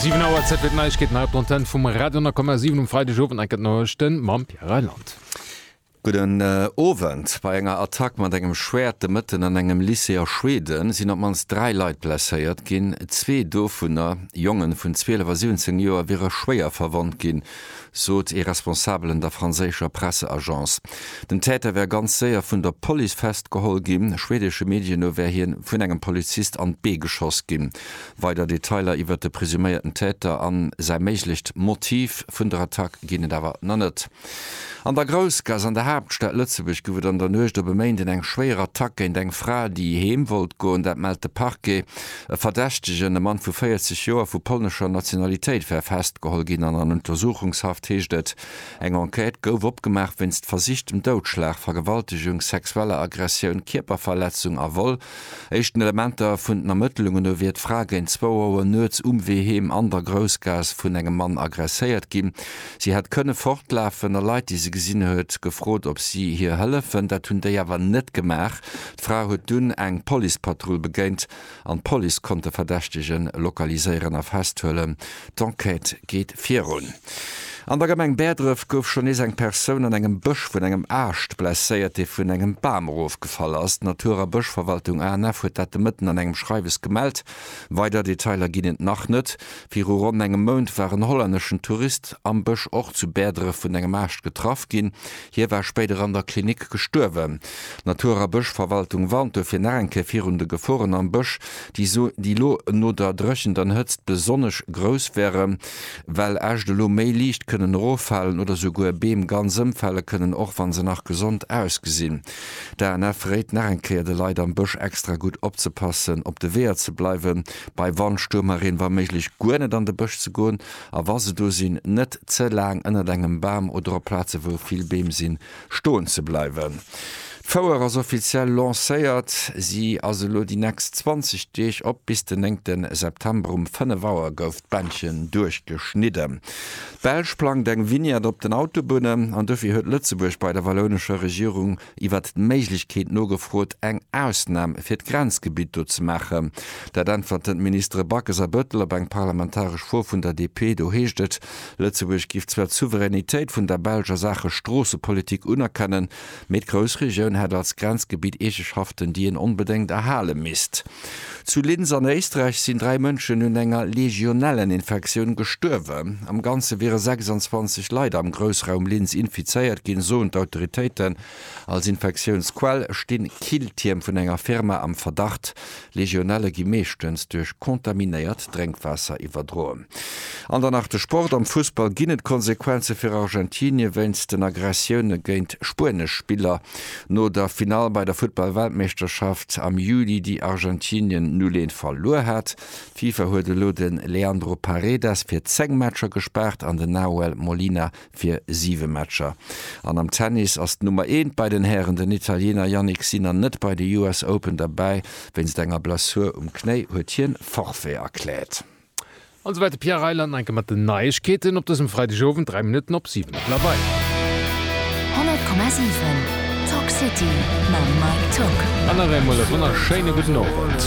7 Auer Zäit fir d'Neiegkeeten hei op der Antenne vum Radio 10,7 um Freidegowend. Enk gëtt Noriichte mam Pierre Reyland. Gudden Owend. Bei enger Attack mat engem Schwäert de Mëtten an engem Lycée a Schweden sinn op d'mannst dräi Leit blesséiert ginn. Zwee dovunner, Jongen vun 12 a 17 Joer, wiere schwéier verwonnt ginn. sot ee Responsabelen der franséischer Presseagence. Den Täter wär ganz séier vun der Police festgeholl ginn. Schweedesche Medien no wär hie vun engem Polizist an d'Bee geschoss ginn. Weider Detailer iwwert de presuméierten Täter a säi méiglecht Motiv vun der Attack ginn et awer nach net. An der Groussgaass an der Haaptstad Lëtzebuerg gouf et an der Nuecht op e Méinden eng schwéier Attack géint eng Fra, déi heem wollt goen. Dat mellt de Parquet. E Verdächtegen, e Mann vu 40 Joer vu polnescher Nationalitéit, war festgeholl ginn an an Untersuchungshaft, heescht et. Eng Enquête gouf opgemaach wéinst versichtem Doudschlag, Vergewaltegung, sexueller Aggressioun, Kierperverletzung a Vol. Éischten Elementer vun den Ermëttlungen no wier d'Fra géint zwou Auer nuets um Wee heem an der Groussgaass vun engem Mann aggresséiert ginn. Si hätt kënne fortlafen a Leit, déi se gesinn huet, gefrot, ob si hir hëllefen. Dat hunn déi awer net gemaach. D'Fra huet dunn eng Policepatrull begéint an d'Police konnt de Verdächtege lokaliséieren a festhuelen. D'Enquête geet virun. An der Gemeng Bäerdref gouf schonn nees eng Persoun an engem Bësch vun engem Aascht blesséiert, dee vun engem Bam erofgefall ass. D'Natur a Bëschverwaltung ANF huet dat de Mëtten an engem Schreiwes gemellt. Weider Detailer ginn et nach net. Viru ronn engem Mount war en hollänneschen Tourist am Bësch och zu Bäerdref vun engem Aascht getraff ginn. Hie war spéider an der Klinik gestuerwen. D'Natur a Bëschverwaltung warnt dofir nach eng Kéier virun de Geforen am Bësch, déi elo no der Dréchent an Hëtzt besonnesch grouss wären, well Äscht elo méi liicht kënnen eroffalen oder souguer Beem ganz ëmfale kënnen, och wa se nach gesond ausgesinn. D'ANF réit nach eng Kéier de Leit am Bësch extra gutt opzepassen, op de Weeër ze bleiwen, bei Wand, Stuerm a Reen wa méiglech guer net an de Bësch ze goen A wa se do sinn, net ze laang ënnert engem Bam oder op Plaze wou vill Beem sinn, stoen ze bleiwen. D'Fouer ass offiziell lancéiert. Si ass elo déi nächst 20 Deeg op. Bis den 9 September um 5 Auer gouf d'Bändchen duerchgeschnidden. D'Belsch plangt eng Vignette op den Autobunnen an dofir huet Lëtzebuerg bei der wallounescher Regierung iwwert d'Méiglechkeet nogefrot, eng Ausnam fir d'Grenzgebitt do ze maachen. Dat äntwerten d'Ministere Backes a Bettel op eng parlamentaresch Fro vun der DP. Do heescht et, Lëtzebuerg géif zwar d'Souveränitéit vun der Belsch a Saache Stroossepolitik unerkennen, mee d'Groussregioun hätt als Grenzgebitt Eegeschaften, déi een onbedéngt erhale misst. Zu Linz an Éisträich sinn dräi Mënschen un enger Legionelleninfektioun gestuerwen. Am Ganze wiere 26 Leit am Groussraum Linz infizéiert ginn, soen d'Autoritéiten. Als Infektiounsquell sti Killtierm vun enger Firma am Verdacht. Legionelle gi meeschtens duerch kontaminéiert Drénkwaasser iwwerdroen. An dann nach de Sport, Am Fussball ginn et Konsequenze fir Argentinie wéinst den Aggressioune géint spuenesch Spiller. No der Finall bei der Futtball-Weltmeeschterschaft am Juli, déi Argentinien 0, 1 verluer hat. D'Fifa huet elo de Leandro Paredes fir 10 Matcher gespaart an den Nahuel Molina fir 7 Matcher. An am Tennis ass d'Nummer eent bei den Hären, den Italiener Jannik Sinner net bei de US Open derbäi. Wéinst enger Blessur um Knéi huet hien Forfait erkläert. An souwäit de Pierre Reyland nach enke mat den Neiegkeeten op dësem Freidegowend, dräi Minutten op siwen ass la bei. 100,7 Talk City mam Mike Tock. An nach eemol e wonnerschéine gudden Owend.